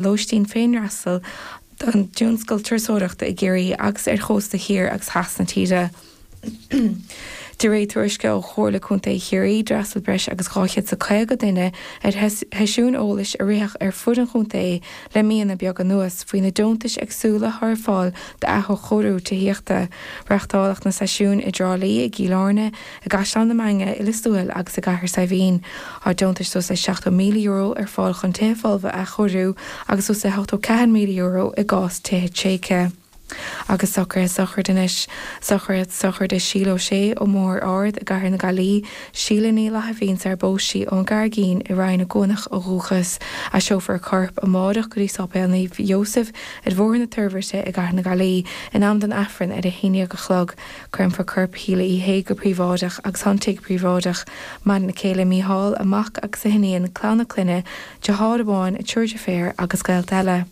lóistín féinfhreastail don dtionscal turasóireachta i gCiarraí agus ar chósta thiar agus theas na tíre. De réir tuairisce ó Chomhairle Contae Chiarraí, d'fhreastail breis agus 250 duine ar sheisiúin eolais a ritheadh ar fud an chontae le míonna beaga anuas faoi na deontais eagsúla atá ar fáil d'athchóiriú tithíochta. Reachtáladh na seisiúin i dTrá Lí, i gCill Airne, I gCaisleán na Mainge, i Liostuathail agus i gCathair Saidhbhín, tá deontais suas le €70,000 ar fáil chun tithe folmha a athchóiriú agus suas le €84,000 i gcás tithe tréigthe. Agus socruithe sochraide anois, socruithe sochraide Síle Uí Shé ó Bhóthar Ard i gCathair na Gaillí, Síle Ní Fhlaithimhín sarar phós sí ón gCarraigín i Rinn na gCuanach ó dhúchas, seolfar a corp amárach go dtí Séipéal Naomh Iósaf ar Bhóthar na Toirbhirte i gCathair na Gaillí in am don Aifreann ar a haon déag a chlog. Créamfar corp Shíle Uí Shé go príobháideach agus tá an tigh príobháideach. Maireann a céile, Mícheál, a mac agus a hiníon, clann a clainne, deartháir amháin, a triúr deirféar agus gaolta eile.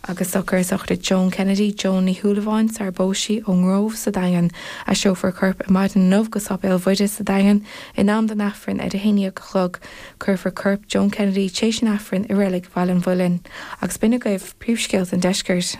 Agus socruithe sochraide Joan Kennedy, Joan Ní Shúilleabháin, sarar phós sí ón nGróbh sa Daingean, seolfar a corp ar maidin inniu go Séipéal Mhuire sa Daingean in am don Aifreann ar a haondhéag a chlog. Cuirfear corp Joan Kennedy tréis an Aifrinn i reilig Bhaile an Mhuilinn. Agus b'in agaibh príomhscéalta an Deiscirt.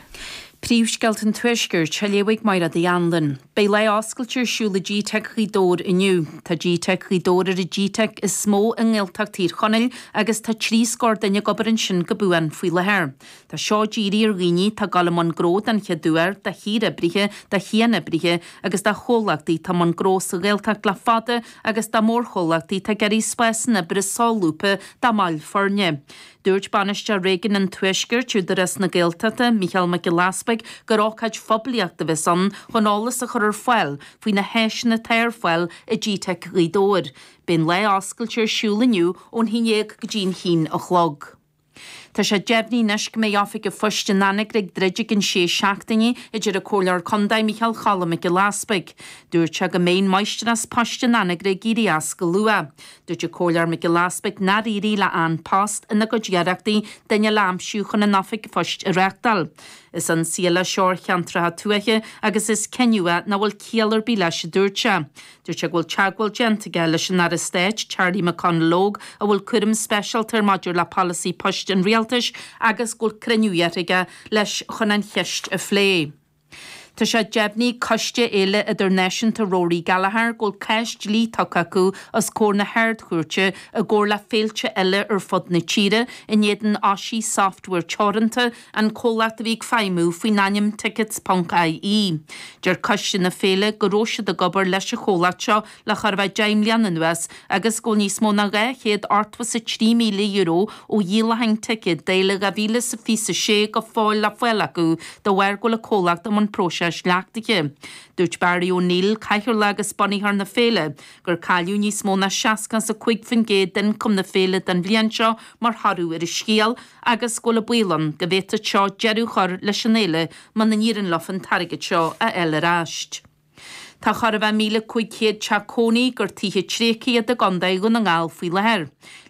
Príomhscéalta an Tuaiscirt á léamh ag Máiréad Uí Anluain. Beidh Lá Oscailte ar siúl i G-Teic Ghaoth Dobhair inniu. Tá G-Teic Ghaoth Dobhair ar an G-Teic is mó i nGaeltacht Thír Chonaill agus tá trí scór duine ag obair ansin go buan faoi láthair. Tá seo dírithe ar dhaoine atá ag gabháil i mbun gnó den chéad uair, do shaoroibrithe, do chianoibrithe agus do chomhlachtaí atá i mbun gnó sa Ghaeltacht le fada agus do mhórchomhlachtaí atá ag iarraidh spásanna oibre solúbtha dá mbaill foirne. Dúirt Bainisteoir Réigiún an Tuaiscirt, Údarás na Gaeltachta, Mícheál Mac Giolla Easpaig gur ócáid phoiblíochta a bheas ann chun eolas a chur ar fáil faoi na háiseanna atá ar fáil i GTeic Ghaoth Dobhair. Beidh an lá oscailte ar siúl inniu ón haon déag go dtí an haon a chlog. Tá sé deimhnithe anois go mbeidh Oifig an Phoist in Anagaire ag druid i gceann sé seachtainí a deir an Comhairleoir Contae, Micheál Choilm Mac Giolla Easpaig. Dúirt sé go mbeidh an Máistreás Poist in Anagaire ag éirí as go luath. Dúirt an Comhairleoir Mac Giolla Easpaig nár éirigh le An Post ina gcuid iarrachtaí duine le aimsiú chun an oifig phoist a reachtáil. Is ionsaí eile seo ar cheantracha tuaithe agus is cinneadh é nach bhfuil ciall ar bith leis a dúirt sé. Dúirt sé go bhfuil teagmháil déanta aige leis an Aire Stáit Charlie McConalogue a bhfuil cúram speisialta air maidir le polasaí poist an Rialtais agus go bhfuil cruinniú iarrtha aige leis chun an cheist a phlé. Tá sé deimhnithe ag Coiste Fhéile Idirnáisiúnta Rory Gallagher go bhfuil cás dlí tugtha acu os comhair na hArd-Chúirte i gcomhar le féilte eile ar fud na tíre in éadan Oshi Software teoranta an comhlacht a bhí ag feidhmiú faoin ainm Tickets.ie. Deir Coiste na Féile go raibh siad ag obair leis an chomhlacht seo le chóir a bheith deich mbliana anuas agus go bhfuil níos mó ná dhá chéad ochtó is a trí míle euro ó dhíolacháin ticéad d'Fhéile 2026 go fóill le fáil acu de bharr go bhfuil an comhlacht i mbun próiseáis leachtaithe. Dúirt Barry O'Neill, cathaoirleach agus bunaitheoir na féile, gur cailleadh níos mó ná seasca is a cúig faoin gcéad d'ioncam na féile don bhliain seo mar thoradh ar an scéal agus go bhfuil an baol ann go bhféadfad seo deireadh a chur leis an fhéile muna n-éiríonn leofa an t-airgead seo a fháil ar ais. Tá chóir a bheith míle cúig chéad teach cónaí gur tithe tréigthe iad i gContae Dhún na nGall faoi láthair.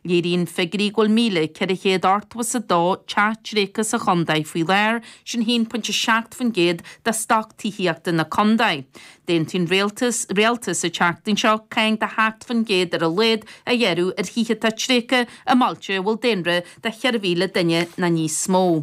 Léiríonn figiúirí go bhfuil míle, ceithre chéad ochtó is a dó teach tréigthe sa chontae faoi láthair, sin haon pointe a seacht faoin gcéad de stoc tithíochta na contae. D'aontaigh an Rialtas an tseachtain seo cáin de sheacht faoin gcéad ar a laghad a ghearradh ar thithe atá tréigthe i mbailte a bhfuil daonra de cheithre mhíle duine ná níos mó.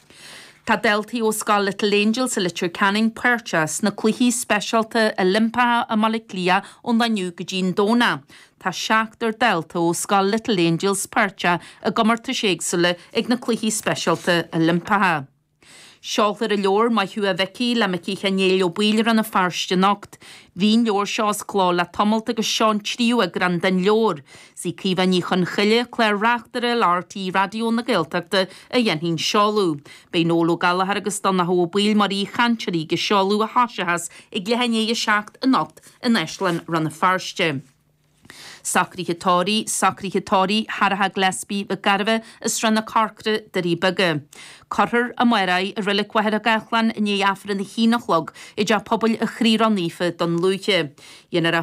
Tá daltaí ó scoil Little Angels i Leitir Ceanainn páirteach sna Cluichí Speisialta Oilimpeacha i mBaile Átha Cliath ón inniu go dtí'n Domhnach. Tá seachtar dalta ó scoil Little Angels páirteach i gcomórtais éagsúla ag na Cluichí Speisialta Oilimpeacha. Seolfar an leabhar Maith Thú a Mhicí le Micí Sheáin Néill Ó Baoill i Rann na Feirste anocht. Bhí'n leabhar seo as cló le tamalt agus seo an tríú eagrán den leabhar. Sí Caoimhe Ní Chonchoille, Clár-Reachtaire le RTÉ Raidió na Gaeltachta a dhéanfaidh an seoladh. Beidh Noel Ó Gallchóir agus Donncha Ó Baoill mar aoi-chainteoirí ag an seoladh a thosóchas ag leath-i-ndiaidh a seacht anocht in Áislann Rann na Feirste. Socruithe tórraimh. Socruithe tórraimh Charita Gillespie, Mhic Gairbheith, i Srath na Corcra, Doirí Beaga. Cuirfear amárach í i Reilig Mhachaire Gathlán i ndiaidh Aifreann a h-aon a chlog i dTeach Pobail a' Chroí Ró-Naofa Dún Lúiche.